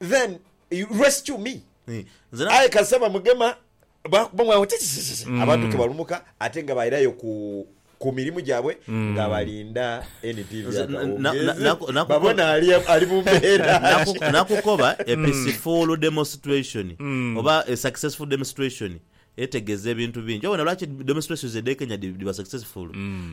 then you rescue me aye kasita bamugema bakubamu agho titititi abantu ke balumuka ate nga bairayo ku ku mirimu gyabwe nga balinda NPV Nze- na- na- akawungeezi naku- naku- babone ali ali mu mbeera ki. Naku- nakukoba a peaceful demonstration oba a successful demonstration Etegeeza ebintu bingi. Obona lwaki demonstrations edh'e Kenya dhiba successful?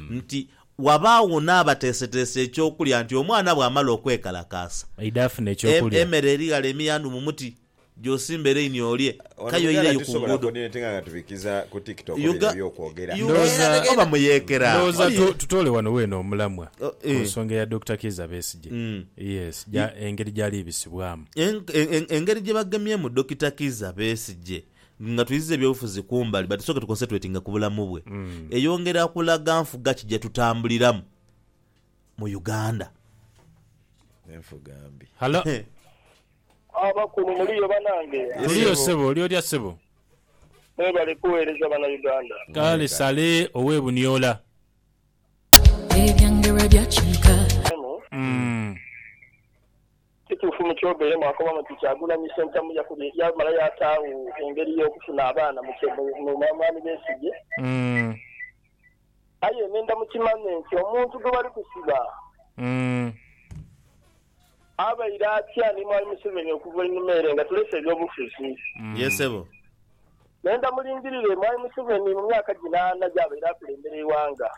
Nti wabaagho n'abateeseteese eky'okulya nti omwana bw'amala okwekalakaasa, Aidha afune eky'okulya. emere eri ghale emiyandu mu muti, gy'osimba ereini olye. Ono Kaye oyireyo ku tusobola nguudo. coordinate nga nga tubikiza ku tiktok bino Uga- ebyokwogera. Uga- Ndowooza- Era oba muyeekera. Ndowooza Oli- tu- tutoole wano weena omulamwa Oh, ku eh. nsonga eya Dokita Kiiza Besigye. Yes, gya- engeri gy'ali bisibwamu. En- en- en- engeri gye bagemyemu Dokita Kiiza Besigye Nga twiziza eby'obufuzi kumbali, but tusooke tuconcentratinge ku bulamu bwe. Eyongera kulaga nfuga ki gyetutambuliramu mu Uganda. Enfuga mbi. Halo. Abakulu muliyo banange? Tuliyo ssebo, oli otya ssebo? Mwebale kuweereza bana Uganda. Kale Saleh ow'e Buniola. Ebyange bwe byakyuka. Eno. Kituufu mu kyogeire mwakoba muti Kyagulanyi Ssentamu yamala yaataagho engeri y'okufuna abaana mu Mwami Besigye, aye nenda mukimanye nti omuntu gwe bali kusiba abaire atya ni Mwami Museveni okuva einhuma ere nga tulese eby'obufuzi. Nenda mulingirire Mwami Museveni mu myaka gino ana gy'abaire akulembera eighanga.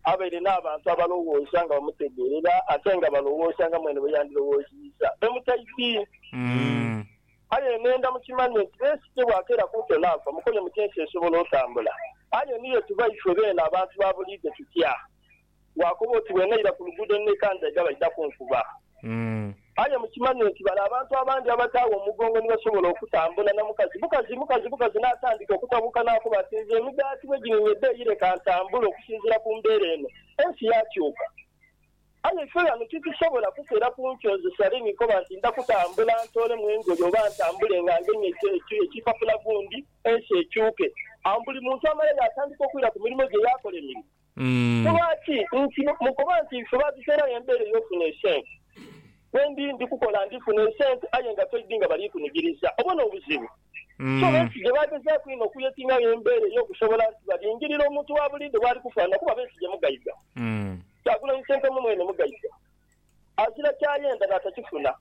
Abaire n'abantu abalowooza nga bamutegeerera ate nga balowooza nga mwene bwe yandirowooziiza e Mutaiti. Aye nhenda mukimanye nti Yesu ye bw'akeera ku nte n'afa, mukoye muti ensi esobola otambula. Aye ni ye tuba ifwe beene abantu ba buliidho tutya? Waakoba oti, Bwe naira ku luguudo ni nekandaika baidhaku nkuba. Aye mukimanye nti bale abantu abandi abataagho omugongo ni basobola okutambula na mukazi bukazi mukazi bukazi n'atandika okutabuuka n'akoba ati, Nze emigaati bwegininya ebbeeyi leka ntambule okusinziira ku mbeera eno. Ensi yaakyuka. Aye ife ghano titusobola kukera ku nkyo nze sale ni koba nti nda kutambula ntoolemu engoye oba ntambule nga ngemye ekipapula gundi ensi ekyuke. Awo buli muntu amale yaatandika okwira ku mirimo gye yaakola emirimo. Ku lwaki? Nti mukoba nti ife baatuteerawo embeera ey'ofuna esente. Bwe ndi ndi kukola ndi funa esente aye nga toidi nga bali kunigiriza. Obwo n'obuzibu. So besigye baagezaaku inho okuyeting'agho embeera ey'okusobola nti balingirira omuntu wa buliidho bw'ali kufaanana kuba besigye mugaiga. Kyagulanyi Ssentamu mwene mugaiga. Agira ky'ayenda n'atakifuna.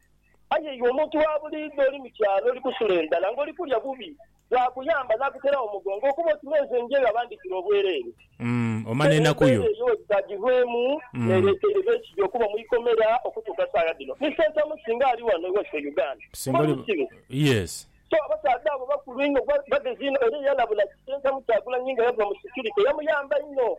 Aye iwe omuntu wa buliidho oli mu kyalo, oli kusula endhala, ng'oli kulya bubi, bwakuyamba n'akuteragho omugongo okuba oti n'enze nje nga bandhikira obwereere. Era embeera eyo wegitaagirwemu n'ereeteire Besigye okuba mu ikomera okutuuka saagha dhino. Ni Sentamu singa ali ghano ewaife e Uganda, ng'oli musibe. So abasaadha abo bakulu inho, bagezi inho era eyalabula Sentamu Kyagulanyi nga yava mu security yamuyamba inho.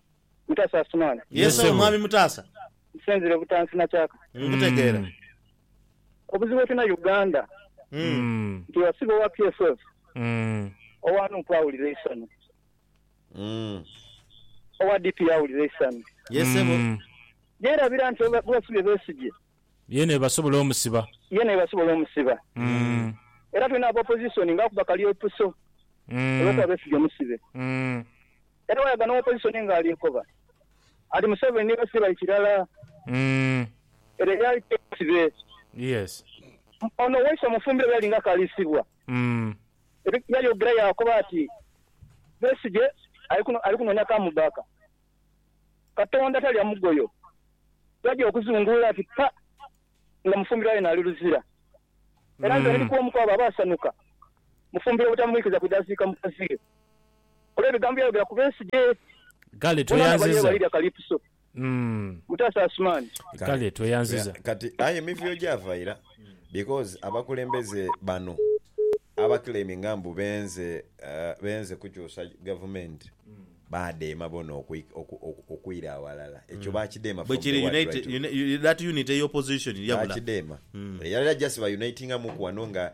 Mutasa Asumani. Yee Yes, ssebo Ssebo. Mwami Mutasa. Nsinzire butansi na kyaka. Nkutegeera. Mm. Obuzibu bwetulina Uganda Mm. Mm. nti wasiba owa PSF Mm. owa nup awulira eisanyu, Mm. owa DP awulira eisanyu. Yee ssebo. Mm. Yerabira nti oba bwebasibye Besigye Yena ebasobola omusiba. yena ebasobola omusiba. Mm. Era tulina aba opposition nga akuba kalyopiso Mm. olwokuba Besigye musibe. Mm. Era wayaga no opposition nga alikoba ati museveni ni basibye bali kirala era eyali teyesibe ono waise omufumbiro byali nga akalisibwa yayogera yakoba ati besigye alikunonya come back katonda talya mugoyo yaja okuzungulula ati pa nga mufumbiro yena ali luzira era nze ndi kwomu kwabo abasanuka mufumbiro obutamuikiza kwidha ziika mukaziwe. Kola ebigambo by'ayogera ku b'ensi gye. Kale tweyanziza. Mutaasa Asumaani. Kale tweyanziza. Kati aye emivuyo gyava ira because abakulembeze bano abaclaiminga mbu benze kukyusa gavumenti baadheema boona okwira aghalala. Ekyo baakidheema from the word right. Bwekiri. That unity eya opposition yabula. Baakidheema. Era era just ba unitingamuku wano nga